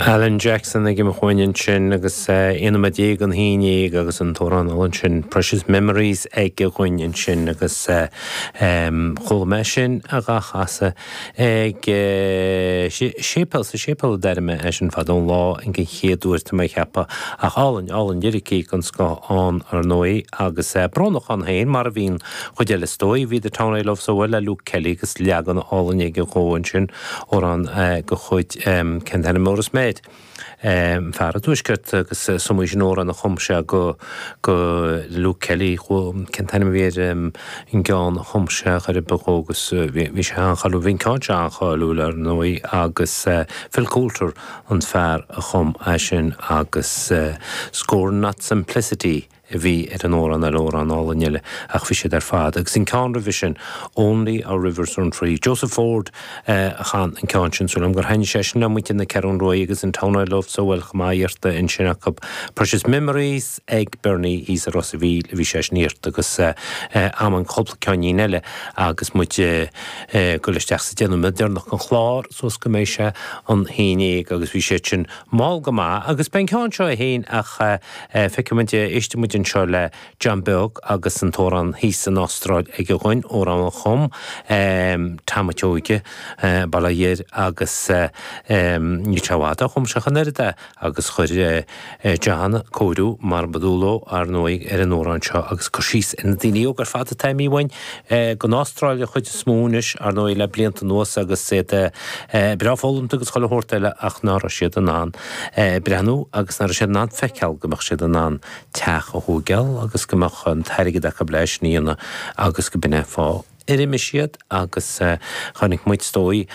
Alan Jackson ag imeacht uainn ansin agus aon nóiméad déag gon haon déag agus an t-amhrán álainn sin Precious Memories aige dúinn ansin agus chuala mé sin dhá chasadh ag séipéal, sa séipéal a d'airigh mé é sin fadó an lá gon chéad uair tá mé a cheapadh. Ach álainn, álainn, liricí den scoth ann ar ndóigh agus brónach ann féin mar a bhí an chuid eile is dóigh. Bhí The Town I Loved So Well le Luke Kelly agus leagan álainn aige dhó ansin. Amhrán go chuid cén t-ainm é arís an fear i dtuaisceart agus is iomaí sin amhrán a chum sé go go Luke Kelly cén t-ainm a bhí ar an gceann a chum sé chor ar bith dhó agus bhí bhí sé an-cháiliúil bhí an ceann seo an-cháiliúil ar ndóigh agus Phil Coulter an fear a chum é sin agus Scorn Not Simplicity a bhí ar an amhrán eile, amhrán álainn eile, ach bhí siad ar fad, agus an ceann roimhe sin, Only Our Rivers Run Free, Joseph Ford a chan an ceann sin, súil agam gur thaitnigh sé sin le muintir na Ceathrún Ruaidhe, agus The Town I Loved So Well chomh maith, iarrtha ansin acu, Precious Memories ag Bernie thíos i Ros an Mhíl a bhí sé sin iarrtha, agus em an cúpla ceáinnín eile agus muid ag dul isteach sa deich nóiméad deireanach den chlár, suas go mbeidh sé an haon déag, agus bhí siad sin Mall go maith, agus beidh an ceann seo é féin ach eh, feicfidh muid, éistfidh muid anseo le John Beag agus an t-amhrán thíos san Astráil aige dúinn, amhrán a chum em Tom an tSeoige, em Baile Láir agus em níl sé i bhfad ó chum sé ach an oiread é agus chuir eh John cóiriú mar ba dual dó, ar ndóigh, ar an amhrán seo agus cur síos ar na daoine óga ar fad atá imithe uainn, gon Astráil an chuid is mó anois, ar ndóigh, le blianta anuas agus iad breá foghlamta agus chuile shórt eile ach nach raibh siad in ann breathnú agus nach raibh siad in ann feiceáil go mbeadh siad in ann teach a thóigeáil agus go mbeadh an t-airgead acu le é sin a dhéanamh agus gurb in é an fáth ar imigh siad agus chonaic muid, is dóigh,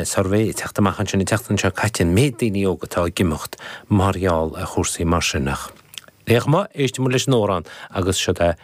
suirbhé ag teacht amach ansin an tseachtain seo caite, an méid daoine óga atá ag imeacht mar gheall ar chúrsaí mar sin ach, é go maith, éistfidh muid leis an amhrán agus siod é.